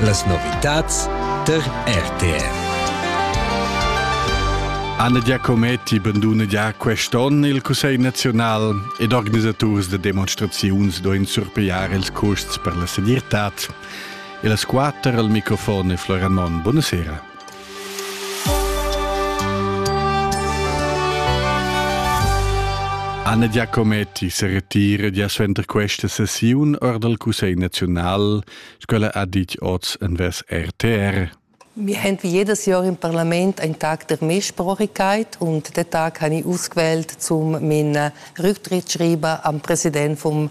Las novitads tar RTR. Anna Giacometti banduna già quest'onn il Cussegl nazional ed organisaturs de demonstraziuns doin surpiar ils custs per la segirtad. E las quatter al microfon e Floran Mon. Buonasera. Anna Giacometti se retira gia suenter questa sessiun or dal Cussegl naziunal, scola ha dit oz en ves RTR. Wir haben wie jedes Jahr im Parlament einen Tag der Mehrsprachigkeit und den Tag habe ich ausgewählt, um meinen Rücktrittsschreiben am Präsident vom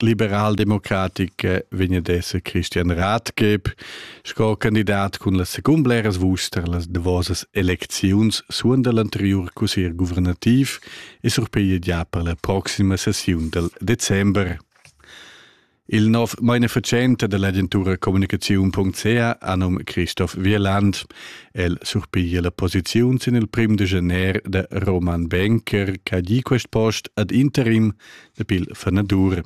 liberaldemocratica vegn ad esser Christian Rathgeb sco candidat cun las secund bleras vuster las davosas elecziuns suonda l'anteriur cussier guvernativ e surpiglia già per la proxima sessiun del december. Il nov manifacente dell'agentura comunicaziun.ca anum Christoph Wieland. El surpiglia la posiziun sin il prim de gener de Roman Benker, che ha gi quest post ad interim e pil fenadur.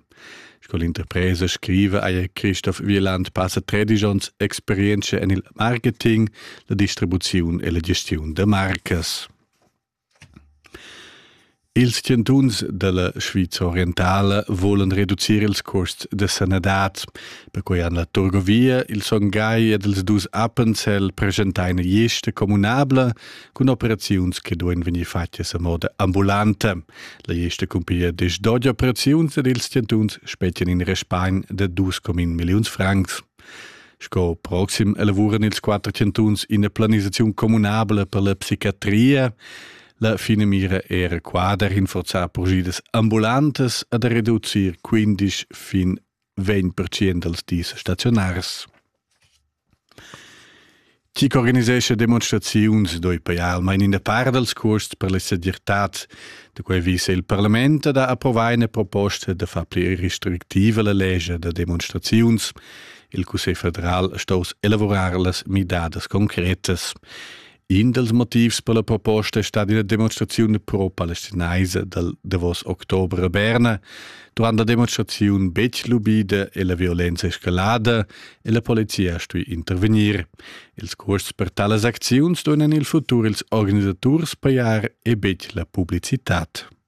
Sco l'interpresa scriva eir Christoph Wieland passa 13 ons experienza en il marketing, la distribuziun e la gestiun da marcas. Ils chantuns della Sviza orientale volen reducir ils costs de sanadad. Perquei han la Turgovia, il Songai ed els dus Appenzell presentai eine Geste communabla cun operaziuns che duein vegnir fatgas a moda ambulanta. La gesta cumpiglia diesch dodi operaziuns ed ils centuns spetgan in respagn de dus comin milliuns francs. Sco proxim elavuran ils quatter centuns ina planisaziun communabla per la psichiatria. La fine mira era qua da rinforzar progidas ambulantes e da reducir 15 fin 20% dals dis staziunaris. Chi ch'organisescha demonstraziuns doi poi almain in par dals cuosts per la segirtad. Da quai vis il parlament da approvar ina proposta da far pli restrictiva la legge da demonstraziuns. Il Cussegl federal sto elaborar las midadas concretas. In dals motivs per la proposta è stata ina demonstraziun pro-palestinaisa dal davos october a Berna, durant la demonstraziun betg lubida e la violenza escalada e la polizia ha stuì intervegnir. Ils custs per talas acziuns duevan il futur ils organisaturs pajar e betg la publicitad.